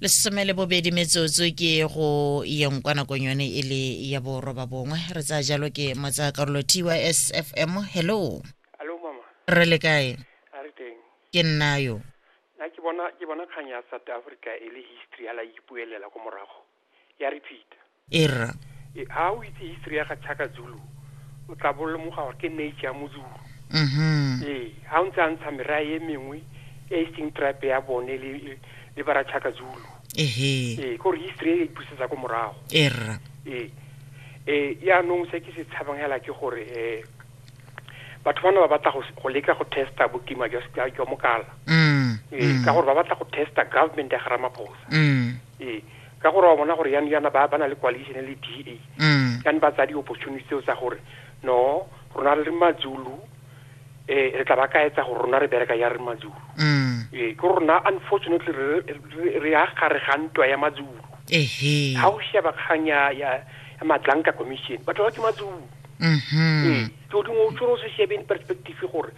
lesome le bobedi metsotso ke go yeng kwa nakong yone e le ya boroba bongwe re tsaya jalo ke motsa karolo tys fm hello Hello mama, re le kae a re teng. ke nna yo Nna ke bona ke bona kgang ya South Africa e le history ya la ipuelela ko morago. ya repeat e rra e ha o itse history ya ga Chaka Zulu o tla bolomoga gore ke nature ya Mozulu mhm ee ha o ntse a ntsha merae e mengwe e e seng tribe ya bone le le- le bara Chaka Zulu ehe ee gore history e e busetsa ko morago e rra ee ee yaanong se ke se tshabang hela ke gore um batho bana ba batla go s- go leka go testa bokima jwa s- jwa jwa mokala mm ee ka gore ba batla go testa government ya ga ramaphosa mm Ee, ka gore wa bona gore yani yana ba ba na le coalition e le DA. Mm. Ka ba tsa di opportunity tseo tsa gore no rona re mazulu eh re tla ba ka etsa gore rona re bereka ya re mazulu. Mm. Eh ke rona unfortunately re re- re ya gare ga ntwa ya mazulu. Ehe. Ha o sheba kgang ya ya ya Madlanka commission batho ba ke mazulu. Mhm. Ee, ke o dingwe o tshwere o se shebe in perspective gore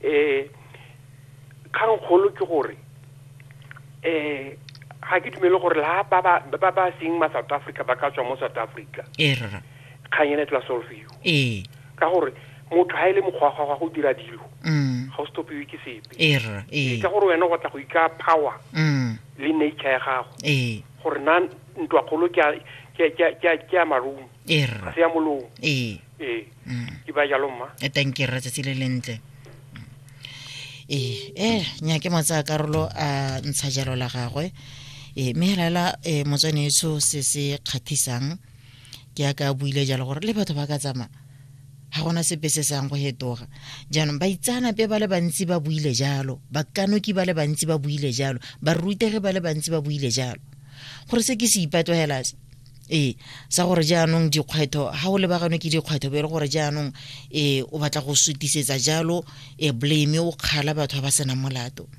eh Kgangkgolo ke gore ga ke dumele gore la ba ba ba ba seng ma South Africa ba ka tswa mo South Africa ee rra kgang ene e tla solfiwa ee ka gore motho ha ile e mokgwagwa gwa go dira dilo mm. ga o stopiwe ke sepe ee rra ee ka gore wena go tla go ika power mm. le nature ya gago ee gore na ntwa kgolo ke ke ke ke ya marumo ee rra ga se ya molomo ee ee ke ba jalo mma e thank you rra tsatsi le lentle ee e nyake motsaya karolo a ntsha jalo la gagwe ee mme helaela um motswane eso se se kgathisang ke ya ka buile jalo gore le batho ba ka tsamaya ga gona sepe se sang go hetoga jaanong baitsanape ba le bantsi ba buile jalo bakanoki ba le bantsi ba buile jalo barutegi ba le bantsi ba buile jalo gore se ke se ipatogela se ee sa gore jaanong dikgwetho ga o lebaganwe ke dikgwetho be e le gore jaanong um o batla go sutisetsa jalo um blame o kgala batho ba ba senang molato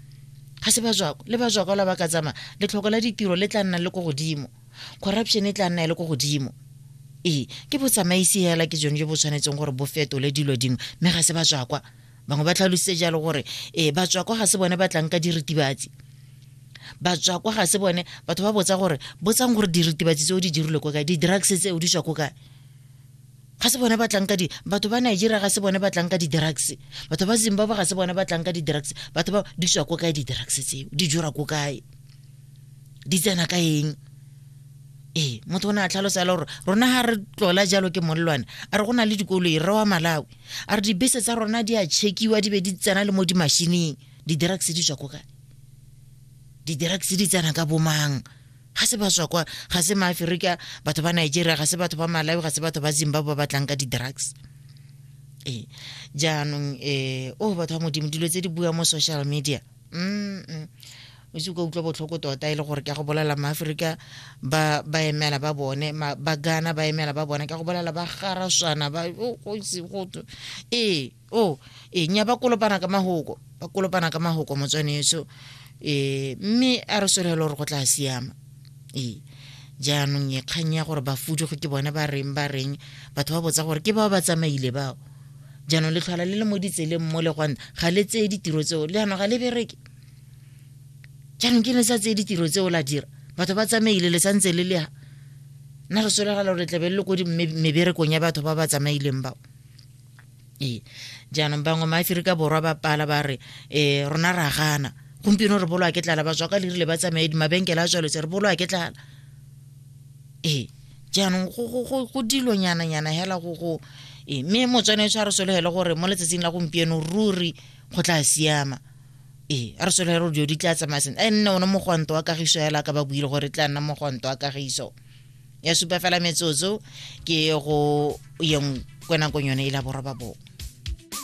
ga se bajwako le bajwako la ba ka tsamaya letlhoko la ditiro le tla nna le ko godimo corruption e tla nna e le ko godimo ee ke botsamaisi fela ke jone jo bo tshwanetseng gore bo fetole dilo dingwe mme ga se bajwakwa bangwe ba tlhalositse jalo gore ee batswako ga se bone ba tlang ka diritibatsi batswako ga se bone batho ba botsa gore botsang gore diritibatsi tse o di dirile ko kae di-drugs tse o di tswa ko kae ga se bone ba tlang ka di batho ba nigeria ga se bone ba tlang ka di-drugs batho ba zimbabwe ga se bone ba tlang ka di-drugs batho ba di tswa ko kae di-drugs tseo di jura ko kae di tsena ka eng ee motho o ne a tlhalosa le gore rona ga re tlola jalo ke molelwane a re go na le dikolo e re wa malawi a re dibese tsa rona di a chekiwa di be di tsena le mo dimashineng di-drugs di tswa ko kae di-drugs di tsena ka bomang ga se ba tswa kwa ga se maaferika batho ba nigeria ga se batho ba malawi ga se batho ba zimbabwe ba batlang ka di-drugs ee jaanong um o batho ba modimo dilo tse di bua mo social media mm o se ka utlwa botlhoko tota e le gore ka go bolela maaforika ba ba emela ba bone ba gana ba emela ba bone ka go bolela ba garaswana ba go itse go ee o e nya ba kolopana ka mahoko ba kolopana ka mahoko motswane eso e mme a re solelo gore go tla siama ee jaanong e kgang ya gore ba fuduge ke bone ba reng ba reng batho ba botsa gore ke bao ba tsamaile bao jaanong le tlhola le le mo ditseleng mo le gwan ga le tseye ditiro tseo le yanong ga le bereke jaanong ke ne sa tseye ditiro tseo la dira batho ba tsamaile le santse le le nna re solegala gore tlabe le le ko meberekong ya batho ba ba tsamaileng bao ee jaanong bangwe maaferika borwa ba pala ba re um rona ra gana gompieno re bolwa ke tlala ba tswa ka lerile ba tsamaye mabenkele a tswaletse re bolwa ke tlala ee jaanong go dilonyananyana fela go go e, mme motswane tshwa re sologele gore mo letsatsing la gompieno ruri go tla siama ee a re sologele gore dilo di tla tsamaya sentle a nne one mogwanto wa kagiso fela ka ba buile gore e tla nna mogwanto wa kagiso ya supa fela metsotso ke go yeng kwenakong yone e la borobabongwe